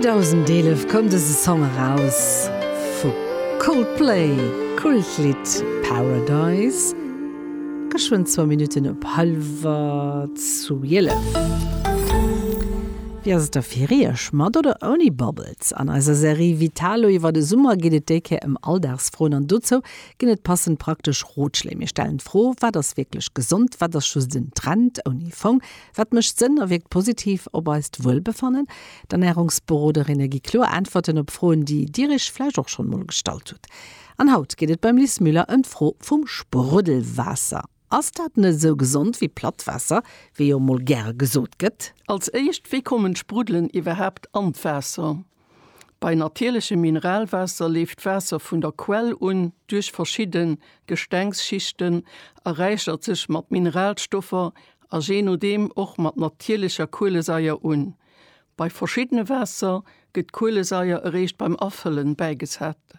2011 koum dëse Song eraus vu Coldplay, Kultlidd Paradise, geschwënn zwou Minutten op hallwer zwielef. Wéi ass et der fir Iech, mat oder ouni Bubbles? An eiser Serie Vitalo iwwer de Summer geet et déi Kéier ëm Alldagsfroen an dozou ginn et passend praktesch Rotschléi. Mir stellen d'Fro, Wat ass wierklech gesond? Wat ass just en Trend ouni Fong? Wat mécht Sënn a wierkt positiv op eist Wuelbefannen? D'Ernärungsberoderinne gi kloer Äntwerten op Froen, déi Dir Iech vläicht och schonn mol gestallt hutt. An haut geet et beim Lis Müller ëm d'Fro vum Spruddelwaasser. Ass dat net esou gesond wéi platt Waasser, wéi jo mol gäre gesot gëtt? Als éischt, Wéi kommen d'Spruddelen iwwerhaapt an d'Waasser? Bei natierlechem Mineralwaasser leeft d'Waasser vun der Quell un duerch verschidde Gestengsschichten a räichert sech mat Mineralstoffer a jee nodeem och mat natierlecher Kuelesaier un. Bei verschiddene Waasser gëtt d'Kuelesaier eréischt beim Afëllen bäigesat.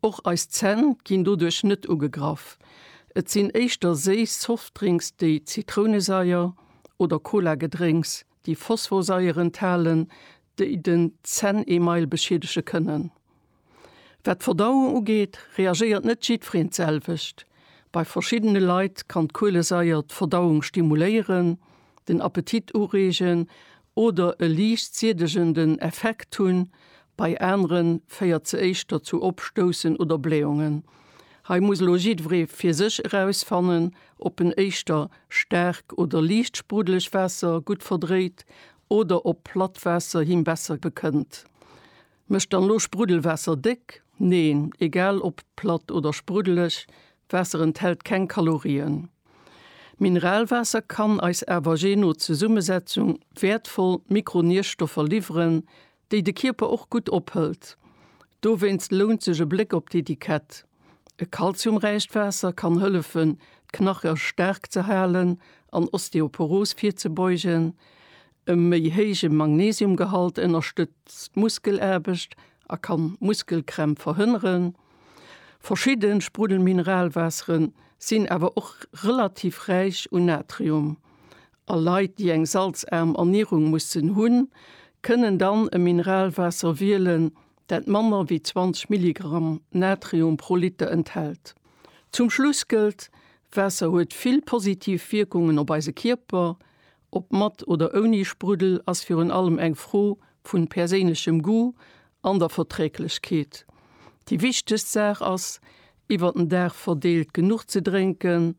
Och eis Zänn ginn doduerch net ugegraff. Et sinn éischter séiss Softdrinks déi Zitrounesaier oder Colagedrénks, déi Phosphorsaier enthalen, déi den Zännemail beschiedege kënnen. Wat d'Verdauung ugeet, reagéiert net jiddwereen d'selwecht. Bei verschiddene Leit kann d'Kuelesaier d'Verdauung stimuléieren, den Appetit ureegen oder e liicht siedegenden Effekt hunn, bei aneren féiert se éischter zu Opstoussen oder Blähungen. Hei muss elo jiddweree fir sech erausfannen, ob en éischter staark oder liicht spruddeleg Waasser gutt verdréit oder ob platt Waasser him besser bekënnt. Mécht dann lo Spruddelwaasser déck? Neen, egal ob platt oder spruddeleg, d'Waasser enthält keng Kalorien. Mineralwaasser kann eis awer jee no Zesummesetzung wäertvoll Mikronierstoffer liwweren, déi de Kierper och gutt ophëlt. Dowéinst lount sech e Bléck op d'Etikett. E kalziumräicht Waasser kann hëllefen, d'Knache staark ze halen an Osteoporos virzebeugen. E méi héije Magnesiumgehalt ënnerstëtzt d'Muskelaarbecht a ka Muskelkrämp verhënneren. Verschidde Spruddelmineralwaassere sinn awer och relativ räich un Natrium, a Leit, déi eng salzaarm Ernierung mussen hunn, kënnen dann e Mineralwaasser wielen, dat manner wéi 20 Milligramm Natrium pro Liter enthält. Zum Schluss gëllt, Waasser huet vill positiv Wierkungen op eise Kierper Ob mat oder ouni Spruddel ass virun allem eng Fro vun perséinlechem Goût an der Verträglechkeet. Déi wichtegst Saach ass iwwert den Dag verdeelt genuch ze drénken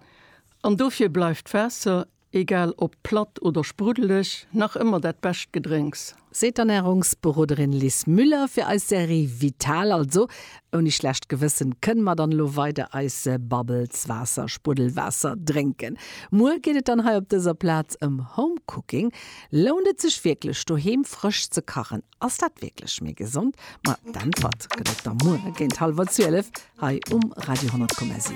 an dofir bleift Waasser, egal ob platt oder spruddeleg, nach ëmmer dat bescht Gedrénks. seet d'Ernärungsberoderin Liz Müller fir eis Serie Vital. Also, ouni schlecht Gewëssen kënne mer dann elo weider eis Bubbles Waasser, Spruddelwaasser, drénken. Muer geet et dann hei op dëser Plaz ëm Home Cooking. Lount et sech wierklech doheem frësch ze kachen? Ass dat wierklech méi gesond? Ma d'Äntwert gëtt et da muer géint hallwer 12 hei um Radio 10,7.